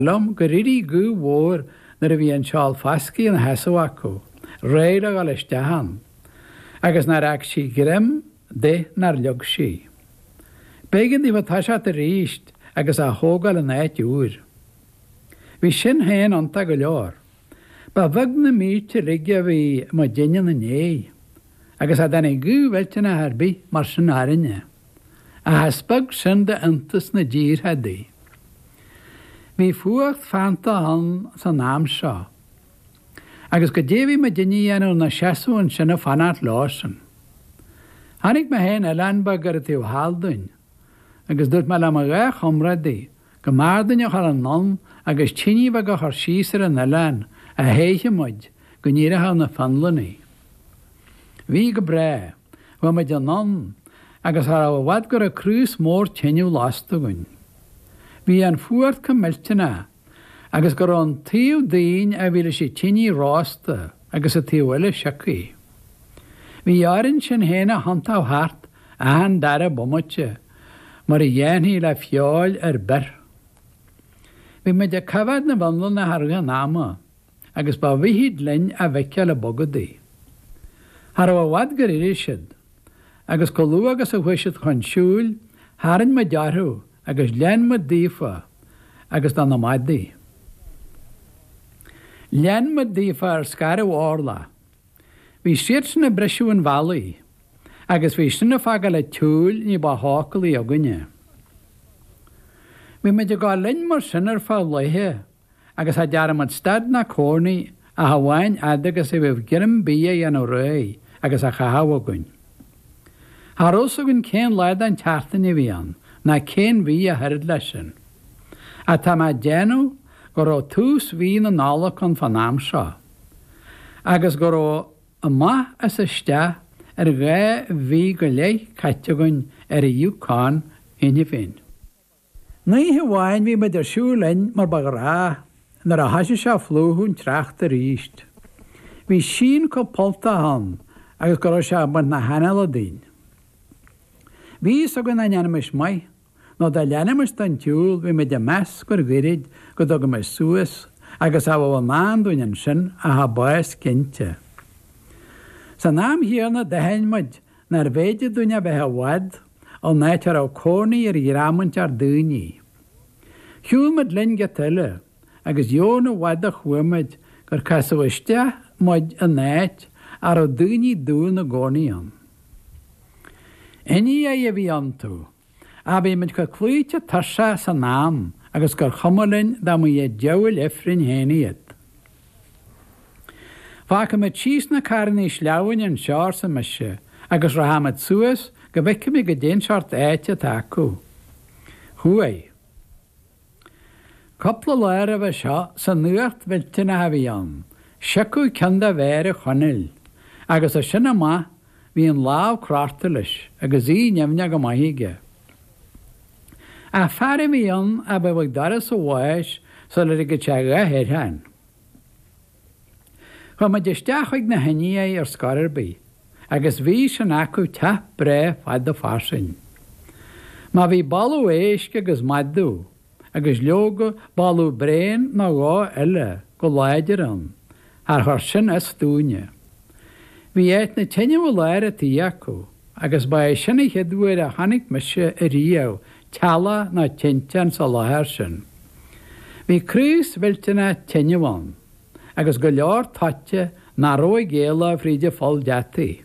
liom gur éirigh gaoth mhór nuair a bhí an seál fascaidh ina sheasamh acu, réidh le dhul isteach ann, agus nár fhág sí greim de nár leag sí. B'éigean daofa toiseacht arís agus á thógáil in áit úr. Bhí sin féin iontach go leor. Ba bheag na mílte uilig a bhí muidinne ina ndiaidh, agus cha dtáinig gaoth mhillteanach ar bith mar sin orainne. ach is beag sin d'iontas na dtíortha adaí. Bhí fuacht feannta ann san am seo agus goidé bhí muidinne a dhéanamh inár seasamh ansin ag fanacht leosan. Chonaic mé féin oileán beag ar an taobh thall dúinn agus dúirt mé le mo dhá chomrádaí go mb'fhearr dúinn a dhul anonn agus tine mhaith a chur síos ar an oileán a théifeadh muid, go n-éireodh na Fionlannaigh. Bhí go breá, chuaigh muid anonn agus cha rabh i bhfad go rabh craos mór tineadh lasta againn. Bhí an fuacht chomh millteanach agus go rabh an taobh dínn a bhí leis an tine rósta agus an taobh eile siocaithe. Bhí orainn sinn fhéin a thiontú thart achan dara bomaite mar a dhéanfaí le feoil ar bith. Bhí muid ag coimheád na bhFionlannaigh i rith an ama agus ba mhithid linn a bhfeiceáil ag bogadaigh. Cha raibh i bhfad gur éirigh siad agus chomh luath agus a chuaigh siad chun siúil tharraing muid orthu agus lean muid daofa agus do na madaí. Lean muid daofa ar scairbh orlach. Bhí siadsan ag briseadh an bhealaigh agus bhí sin ag fágáil an tsiúil ní ba shócúlaí againne. Bhí muid ag gabháil linn mar sin ar feadh laethe agus cha dtearn muid stad ná cónaí ach amháin fhad agus a bhíodh greim bídh á dhéanamh réidh agus á chaitheamh againn. Cha raibh fhios againn cén lá den tseachtain a bhí ann ná cén mhí ach oiread leis sin. Ach tá mé ag déanamh go raibh tús mhí na Nollag ann fán am seo. agus go raibh amach is isteach ar dhá mhí go leith caite againn ar an Yukon cheana féin. Aon oíche amháin bhí muid ag siúl linn mar ba ghnách, nuair a thosaigh sé a phlúchadh an tsneachta arís, bhí síon chomh polltach ann agus go raibh sé ag baint na hanála dínn. Bhí fhios againn dá ndéanfaimis maith Nó dá leanfaimis don tsiúl bhí muid ag meas gur ghairid go dtugaimis suas agus cha bheadh i ndán dúinn ansin ach an bás cinnte. San am chéanna d'aithin muid nár bh'fhéidir dúinn a bheith i bhfad ón áit a raibh cónaí ar dhream inteacht daoine. Shiúil muid linn giota eile agus chan i bhfad a chuaigh muid gur casadh isteach muid in áit a raibh daoine dubha ina gcónaí ann. Indiaigh a bhí iontu, ach bhí muid chomh cloíte tuirseach san am agus gur chuma linn dá mba iad diabhail ifrinn féin iad. Fágfaidh muid síos na carrannaí sleamhnáin anseo, arsa mise, agus rachaidh muid suas go bhfeicfimid goidé'n seort áite atá acu. Chuaigh. Cupla lá roimhe seo san fhuacht mhillteanach a bhí ann, siocadh ceann de mhéara Chonaill, agus as sin amach bhí an lámh cráite leis agus í nimhneach go maith aige. Ach fear a bhí ann a bheadh ag doras a bháis sula ligfeadh sé a dhath air féin. Chuaigh muid isteach chuig na hIndiaigh ar scor ar bith agus bhí sin acu teach breá fada fairsing. Má bhí boladh éisc agus madadh agus leoga boladh bréan nó dhó eile go láidir ann, char chuir sin as dúinne. Bhí áit na teineadh i lár an tí acu agus ba é sin a chéad uair a chonaic mise a riamh teallach ná tinteán sa láthair sin. Bhí craos mhillteanach teineadh ann agus go leor toite nach raibh ag éaló fríd an pholl deataí.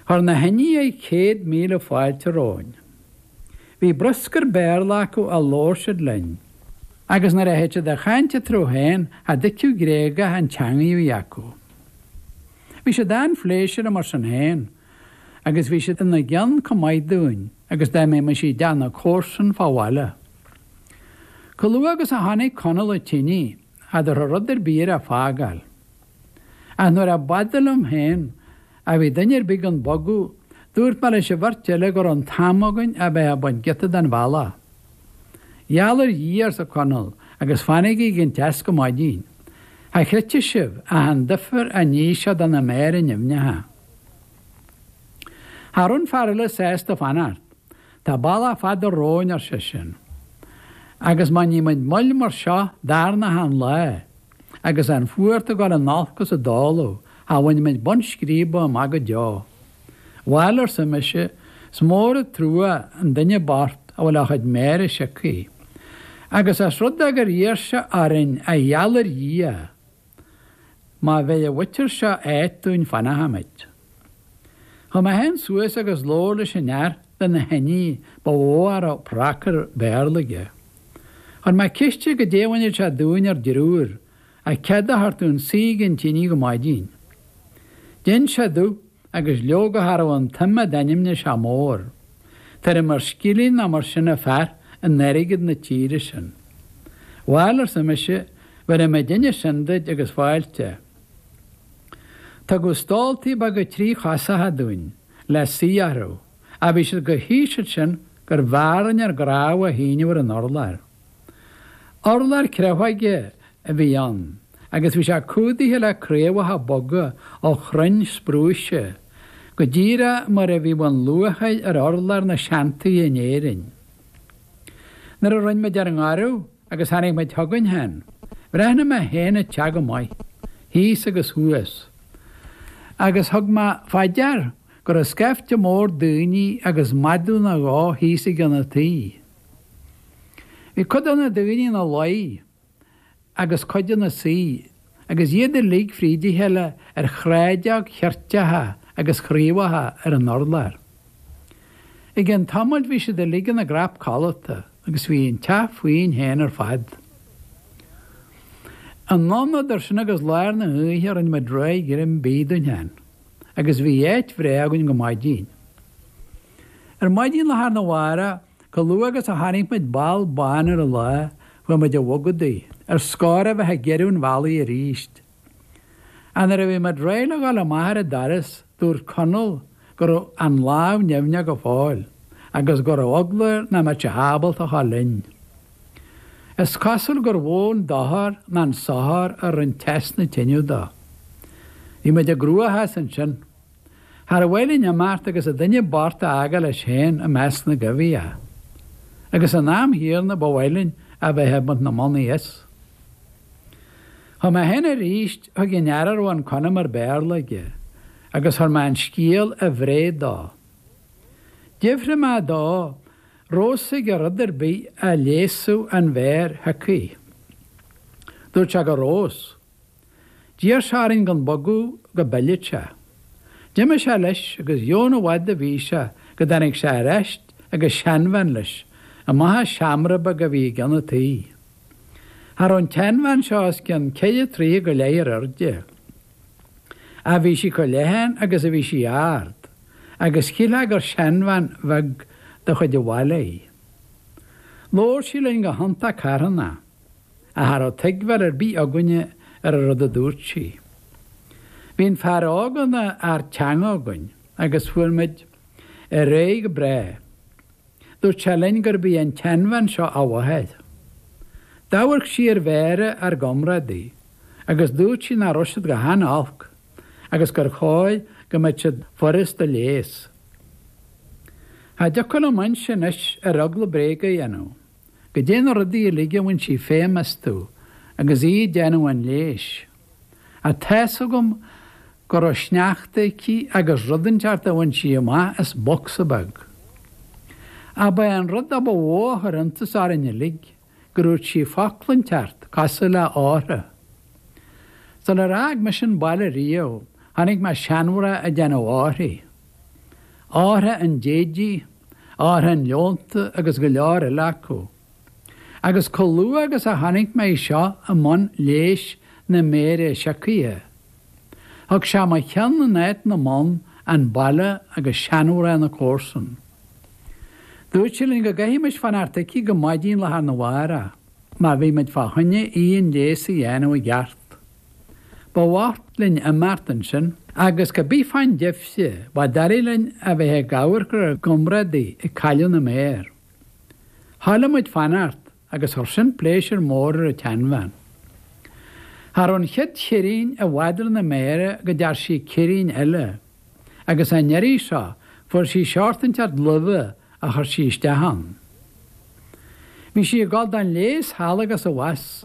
Chuir na hIndiaigh céad míle fáilte romhainn. Bhí bruscar Béarla acu a labhair siad linn, agus nuair a thit siad a chaint eatarthu féin cha dtuigfeadh Gréagaigh an teangaidh a bhí acu. Bhí siad an-phléisiúrtha mar sin féin, agus bhí siad ina gceann chomh maith dúinn agus dá mbeimis i dteach na comharsan fá bhaile. Chomh luath agus a chonaic Conall an tine cha dtabharfadh rud ar bith air a fágáil. Ach nuair a b'fhada liom féin a bhí duine ar bith gan bogadh, dúirt mé leis an bheirt eile go raibh an t-am againn a bheith ag baint giota den bhealach. Gheall ar Dhia, arsa Conall, agus fanaigí ag an teas go maidin. Cha chreidfeadh sibh ach an duifear a níos sé do na méara nimhneacha. Cha raibh an fear eile sásta fanacht. Tá bealach fada romhainn, ar seisean. Agus má ní muid moill mar seo darna hachan lá, agus an fuacht ag gabháil in olcas i dtólamh, cha bhainfidh muid bun scríbe amach go deo. Bhail, arsa mise, is mór an trua an duine bocht a bhfuil a chuid méara siocthaí. Agus os rud é gur iarr sé orainn a gheall ar Dhia! Má bheir an mhuintir seo áit dúinn fanfaimid. Chuaigh mé féin suas agus labhair leis an fhear de na hIndiaigh ba mhó a raibh pracar Béarla aige. Chuir mé ceist air goidé a bhainfeadh sé dúinn ár dtriúr as cead a thabhairt dúinn suí ag an tine go maidin. D'inis sé domh. agus leoga cha raibh an tsuim a d'ainmnigh sé mór. Tuairim ar scilling nó mar sin a bheadh in airgead na tíre sin. Bhail arsa mise bhéarfaidh muidinne sin duit agus fáilte. Tugadh stóltaí beaga tríchosacha dúinn le suí orthu ach bhí siad chomh híseal sin gurbh fhearr linn ár gcnámha a shíneadh ar an urlár. Urlár creafóige a bhí ann agus bhí sé cumhdaithe le craobhacha boga ó chrainn sprúise, go díreach mar a bhíodh an luachair ar urlár na seantithe in Éirinn. Nuair a rinne muid ár ngoradh agus tháinig muid chugainn féin, bhreathnaigh mé féin an teach go maith, thíos agus thuas, agus thug mé faoi deara go raibh scaifte mór daoine agus madadh nó dhó thíos i gcionn an tighe. Bhí cuid de na daoine ina luí agus cuid ina suí agus iad uilig fríd a chéile ar shráideog cheirteacha agus chraobhacha ar an urlár. I gceann tamaill bhí siad uilig ina gcnap codlata agus bhí an teach fúinn féin ar fad. Anonn idir sin agus lár na hoíche rinne muid réidh greim bídh dúinn féin agus bhí áit bhreá againn go maidin. Ar maidin lá arna mhárach, chomh luath agus a tháinig muid ball bán ar an lá, bhí muid ag bogadaigh, ar scór a bheith ag giorrú an bhealaigh arís. Ach nuair a bhí muid réidh le ghabháil amach ar an doras, dúirt Conall go raibh an lámh nimhneach go fóill agus go raibh eagla air nach mbeadh sé ábalta a ghabháil linn. Is cosúil gur mhó an dochar ná an sochar a rinne teas na tineadh dó. Bhí muid i gcruachás ansin. Char mhaith linn imeacht agus an duine bocht a fhágáil leis féin i measc na gcoimhthíoch. Agus san am chéanna ba mhaith linn a bheith ag baint na mbonnaí as. Chuaigh mé féin arís chuig an fhear a raibh an conamar Béarla aige agus chuir mé an scéal a bhréid dó. D'fhiafraigh mé dó an raibh a fhios aige rud ar bith a leigheasfadh an mhéar shioctha. Dúirt sé go raibh a fhios. D'iarr sé orainn gan bogadh go bpillfeadh sé. D'imigh sé leis agus dheamhan i bhfad a bhí sé go dtáinig sé ar ais agus seanbhean leis, amach as seomra beag a bhí i gcionn an tí. Cha raibh an tseanbhean seo os cionn ceithre troighe go leith ar airde. Ach bhí sí chomh leathan agus a bhí sí ard, agus shílfeá gur seanbhean bheag de chuid an bhaile í. Labhair sí linn go hiontach carthanach. Ach cha raibh tuigbheáil ar bith againne ar an rud a dúirt sí. Bhí an fear óg ina fhear teanga againn agus fuair muid ar aghaidh go breá. Dúirt sé linn gurb í an tseanbhean seo a mháthair. D'amharc sí ar mhéara ár gcomrádaí agus dúirt sí nach raibh siad go han-olc agus gur chóir go mbeadh siad furast a leigheas. Cha dtiocfadh liom inse anois ar eagla bréag a dhéanamh. goidé na rudaí uilig a bhain sí feidhm astu agus í ag déanamh an leighis. Ach tá's agam go raibh sneachta aici agus rud inteacht a bhain sí amach as bocsa beag. Ach ba é an rud a ba mhó a chuir iontas orainn uilig gur úirt sí focal inteacht, cosúil le hortha. Sular fhág mise an baile riamh chonaic mé seanmhná ag déanamh orthaí. Ortha an Déididh, Ortha an Leonta agus go leor eile acu. Agus chomh luath agus a chonaic mé í seo i mbun leigheas na méire siocaithe, thug sé i mo cheann in áit na mbonn, an baile agus seanmhná na comharsan. Dúirt sé linn go gcaithfimis fanacht aici go maidín lá arna mhárach má bhí muid fá choinne í an leigheas a dhéanamh i gceart. Ba mhaith linn imeacht ansin agus cé bith fán deifre ba doiligh linn a bheith ag amharc ar ár gcomrádaí ag cailleadh na méar. Thoiligh muid fanacht agus chuir sin pléisiúr mór ar an tseanbhean. Cha raibh an chéad cheirín i bhfad ar na méara go dtearn sí ceirín eile agus an iarraidh seo fuair sí seort inteacht luibhe a chuir sí isteach ann. Bhí sí ag dul don leigheas thall agus abhus.